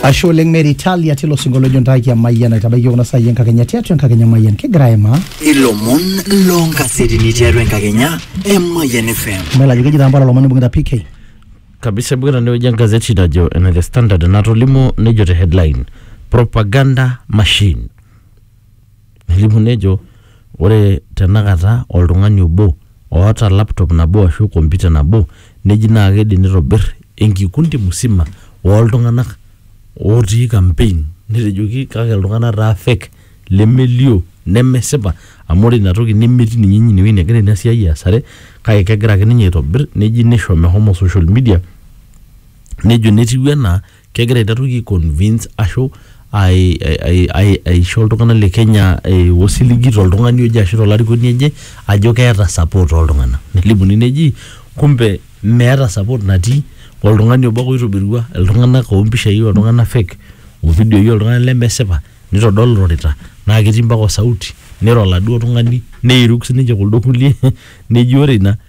ashe oleng mary talia tilo sinkoliojo ntaaki emayian aitabaiki kuna saai enkakenya tiatua enkakenya mayian kigira aimaa ilomon loonkasetini tiatua enkakenya emayian fm melajo keji taa mpala lomon ibung'ita pk kabisa ibung'ita enewueji engazeti najo ene the standard enatolimuo nejo te headline propaganda machine nelimu nejo ore tenakata oltung'ani obo oota laptop nabo ashu kompyuta nabo neji naa kidim nitobir enkikundi musima oltung'anak otii campaign netejoki kake iltung'anak taa fake lemelio nemesipa amu ore inatoki nemetii ninye inewueji negira ina siai aasare kake kegira ake ninye aitobirr neji nisho mehomo social media nejo netiu enaa. kegira aiteruki ai convince ashu ai- ai- ai- aisho iltung'anak le Kenya eh, osiligi toltung'ani oje ashu tolarikoni oje ajo keeta support oltung'anak. Nelimuni neji kumbe meeta support natii, oltung'ani obo ake oitobirua iltung'anak o mpishai oltung'anak fake, o vidioi oltung'anak lemesipa, nitodol irorita naa ketii mpaka o sauti, niro oladuo tung'ani, neiruk sininche kuldo kulie neji ore ina...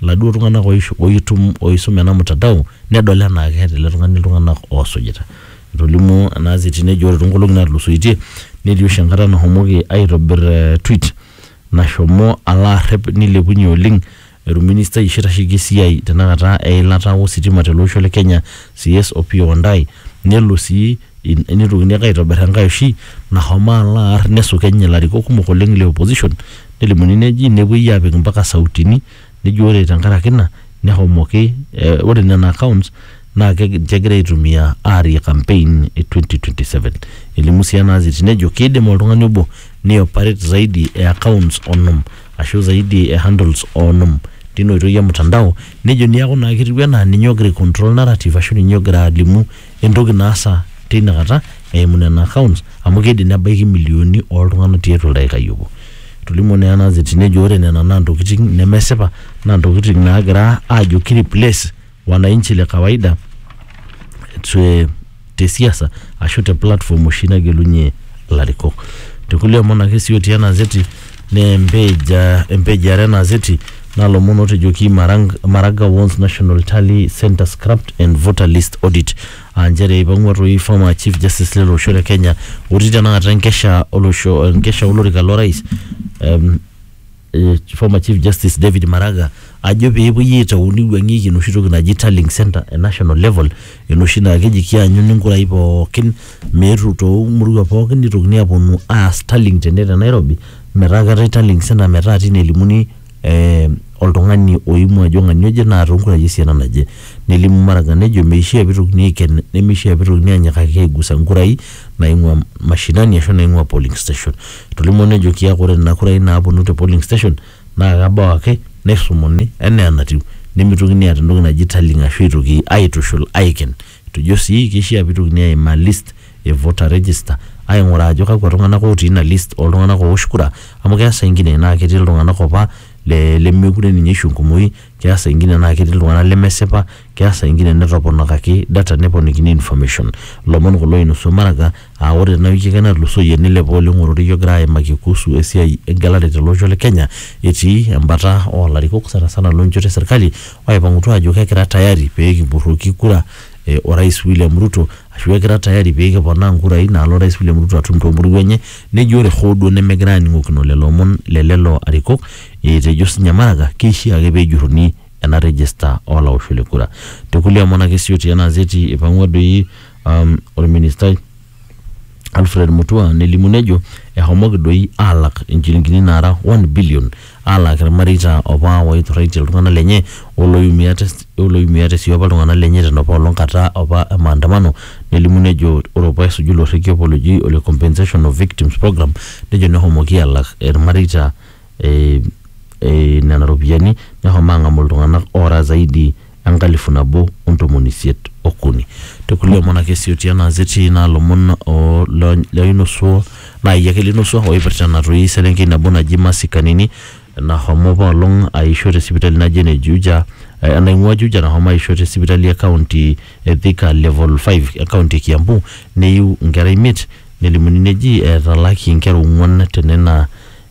laduo tung'anak oishu- oitum oisum ena mtandao nedol enaa keeta ele tung'ani iltung'anak oosujita. Etolimuo ena gazeti nejo ore toonkolong'i naatulusoitie netii oshi enkata nashomoki aitobir ee tweet nashomo alo arrep nilepunye oleng orministai oshi oitasheki esiai tenakata eilata o sitima tele osho le Kenya CS Opiyo Wandayi nelo sii In- Neitokini ake aitobir enkae oshi nahomo alo aar nesukeny ilarikok kumok oleng le opposition nelimuni neji nepuoi apik mpaka sautini neji ore tenkaraki ina nehomoki eh, ore nena accounts naa keg- ninche egira aitumia aarie campaign e 2027 elimu sii ena aziti nejo kiidim oltung'ani obo ni operate zaidi e accounts onom ashu zaidi e handles onom tina oitoi e mtandao nejo niaku naa ketiu enaa ninye ogira ai control narrative ashu ninye ogira alimu entoki naasa teina kata eimu nena accounts amu keidim nebaiki milioni oltung'anak tiatua oldaikai obo. Etolimuo naa ena azeti nejo ore nena naa ntokitin nemesipa naa ntokitin naagira aajo ki replace wananchi le kawaida te, te siasa ashu te platform oshi nagelunye ilarikok. Te kulie omon ake sii otii ena azeti naa empage ah, empage are ena azeti nalomon otejoki Marang, Maraga Wons National Tally Center Scrapped and Voter List Audit aa nchere eipang'ua toi former Chief Justice lele osho le Kenya otii tenakata enkesha olosho enkesha olorika lorais em, eh, former Chief Justice David Maraga ajo pee epuoi aitau neiwuang'ieki enoshi toki naji tallying center e national level Enoshi naa keji kianyuni nkurai pookin meetu too murua pookin nitokini aaponu aas tallying tene te Nairobi metaa keetae tallying centre metaa tine elimuni eh oltung'ani oimua ajo ng'ania oje naa too nkurai esiana naje. Nelimu Maraga nejo meishia pitokini aiken nemeishia pitokini anyikaki aigusa nkurai naing'ua mashinani ashu naing'ua polling station. Etolimuo nejo kiaku ore nena kurai naaponu te polling station naa kebau ake neirrumuni enaa enatiu nemitokini aata entoki naji tallying ashu aitoki aitushul aiken. Etejo sii keishaa peitokini aimaa list e voter register aing'uraa ajo kakwa tung'anak otii ina list oo ltung'anak oowosh kura amu keya saa ingine naa ketii iltung'anak opa lemekure ninye eisho enkumoi, keya saa ingine naa ketii iltung'anak lemesipa. Keya saa ingine netoponakaki data neponikini information. Lomon kulo oinusua Maraga aa ore tena wiki ake natulusoyie neilepa oleng ororei ogira aimaki kuhusu esiai engelare tele osho le Kenya etii embata oo larikok sanasana loo nchoto e serkali oipang'utua aajo kekira tayari pee kipurroki kura e Orais William Ruto ashu ekira tayari pee kiponaa nkurai naalo Orais William Ruto atum too mpuruo enye neji ore hoo duo nemegirai aaning'okino lelo omon le lelo arikok etejo sinye Maraga keishia ake pee ejurruni ena rejista oo laoshok le kura. Te kulie omon ake sii otii ena azeti eipang'ua doi um, olministai Alfred Mutua nelimu nejo ehomoki doi aalak inchilingini naara 1 billion aalaaki ilmareita opa ooiturraitie iltung'ana lenye olooiumiate olooiumiate sii opa iltung'ana lenye tena pa olong kata opa e maandamano nelimu nejo ore opa esuju ilo rrekie opa loji ole compensation of victims programme nejo nehomoki aalak ilmareita eh, eh, nena ropiyiani nehomo ang'amu iltung'anak oora zaidi enkalifu nabo ontomoni isiet okuni tekulie omon ake sioti ena azeti naa lomon o- lo- loinosuo naa iyie ake linosuo oipirta ena toi selenkei nabo naji Mercy Kanini nahomo apa olong aisho te sipitali naji ene Juja eh, enaing'ua Juja nahomo aisho te sipitali e county e Thika level 5 e county e Kiambu neiu inkera imiet nelimuni neji etalaki inkera ong'uan tenena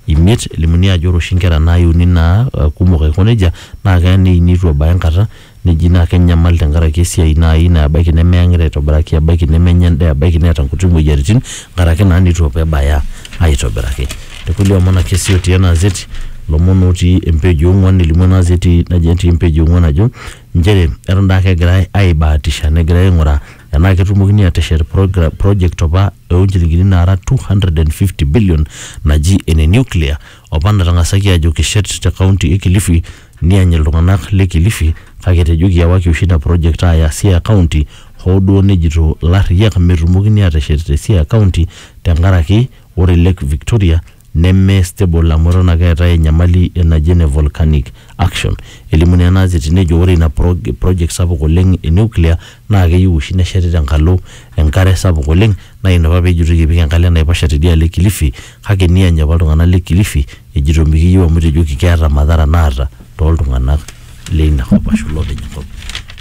imiet. Elimuni ajo ore oshi inkera naaiuni naa kumok aiko nejia naa keya neini eitu ebaya enkata neji naa kenyamal tenkaraki esiai naai naa ebaiki nemeyang'ita aitobiraki, ebaiki nemenya endaa, ebaiki neeta inkuti moyiaritin nkaraki naa neitu apa ebaya aitobiraki. Te kulie omon ake sii otii ena azeti, ilomon otii empage e ong'wan elimu ena azeti naji etii empage e ong'wan ajo inchere eton daake egirai aibaatisha negirai aing'uraa enaa ketumokini aateshet program, project opa oo nchilingini naara 250 billion naji ene nuclear opa natang'asaki aajo kishet te kaunti e Kilifi niany iltung'anak le Kilifi kake etejoki ewaki oshi ina project aaya Siaya kaunti hoo duo nejito ilarriyiak metumokini aateshet te Siaya kaunti tenkaraki ore Lake Victoria neme stable amu eton ake eetae enyamali e naji ene volcanic action. Elimu naa ena azeti nejo ore ina prog project sapuk oleng e nuclear naa keyieu oshi nesheti tenkalo enkare sapuk oleng naa ina apa pejitoi epik enkalo enaiposha tidialo e kilifi kake niany apa iltung'anak le kilifi ejito mikiyieu amu etejoki keeta madhara naata toltung'anak. leina kop ashu lopeny enkop.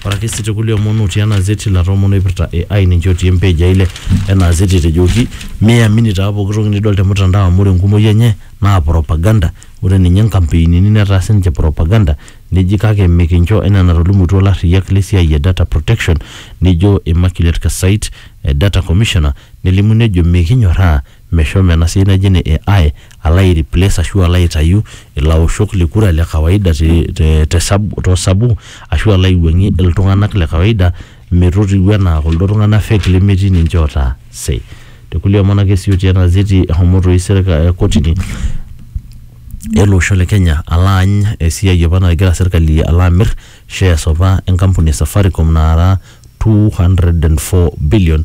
Ore ake sii tekulie omon otii ena azeti ilata omon oipirta AI ninche otii empage eile ena azeti etejoki miamini taa pooki toki nidol te mutandao amu ore enkumoi enye naa propaganda. Ore ninye nkampeinini netaa sininche propaganda neji kake mikincho enaa enatolimutuo ilarriyiak le siai e data protection nijo Immaculate Kasait, Data Commissioner nelimu nejo mikinyorraa Meshomo ena siai naji ene AI alo ai replace ashu alo aitayu ilaoshok le kura le kawaida too sabu ashu alo aiwuang'ie iltung'anak le kawaida metotiwuo enaa kuldo tung'anak fake lemetii ninche ootaa say. Te kulie omon ake sii otii ena ziti eshomo toi serikali kotini ele osho le Kenya alo aany esiai opa nagira serikali alo amir shares opa enkampuni e Safaricom naara two hundred and four billion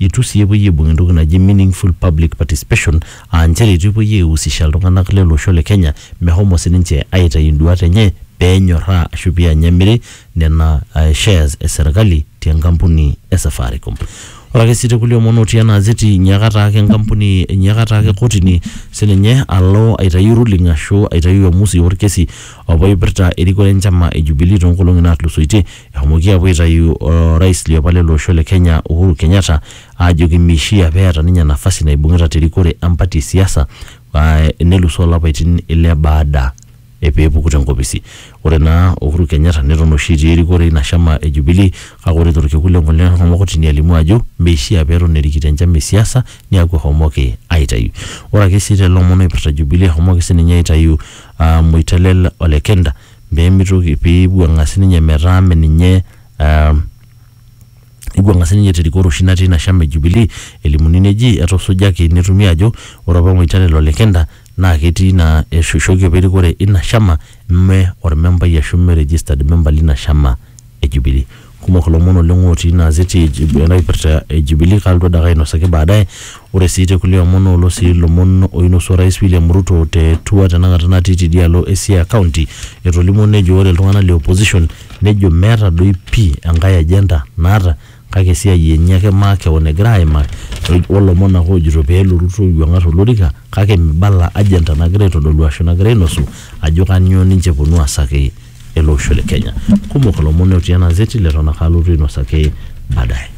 Eitu sii epuoi aibung entoki naji meaningful public participation aa nchere eitu epuoi aihusisha iltung'anak lele osho le Kenya mehomo sininche aaitayu induaat enye pee enyorraa ashu pee eany emiri nena shares e serkali te nkampuni e Safaricom. Ore ake sii te kulie omon ootii ena azeti enyiaka taake enkampuni, enyiaka taake kotini sininye alo aitayu ruling ashu aitayu uamusi olkesi apa oipirta erikore enchama e Jubilee too nkolong'i naatulusoitie Eshomoki apuo aitayu orais liopa lele osho le Kenya Uhuru Kenyatta aajoki meishia pee eeta ninye nafasi naibung'ita te rikore empati e siasa nelusoo lapaitin ile baada e pee epuku te nkopisi. Ore naa Uhuru Kenyatta neton oshi etii erikore ina shama e Jubilee kake ore to lkekun le ngolon eshomo kotini alimu ajo meishia pee eton erikito enchama e siasa niaku eshomoki aitayu. Ore ake sii te lelo omon oipirta Jubilee eshomoki sii ninye aitayu Moitalel Olekenta. pee mitoki pee eiwuang'a sininye metaa mme ninye ah, eiwuang'a sininye terikore oshi natii ina shama e Jubilee elimuni neji etusujaki netumi ajo ore apa Waitara ilo lekinta naa ketii ina eishooki apa erikore ina shama mme ormembai ashu mme registered member lina shama e Jubilee. kumok ilomon oleng otii ina azeti e Jub- ena kipirta e Jubilee kalotu adake ainosaki baadaye ore sii te kulie omon olo sii ilomon oinosu orais William Ruto te tour tenakata natii tidialo e Siaya county etolimuo nejo ore iltung'anak le opposition nejo meeta doi pii enkae agenda naata kake esiai enye ake makeon egira aimaa olomon ake ojito peelo Ruto aiwuang'ar olorika kake mibala agenda nagira aitodolu ashu nagira ainosu ajo kanyio ninche eponu aasaki. ele osho le Kenya. Kumok ilomon otii ena azeti leton ake alotu ainosaki baadaye.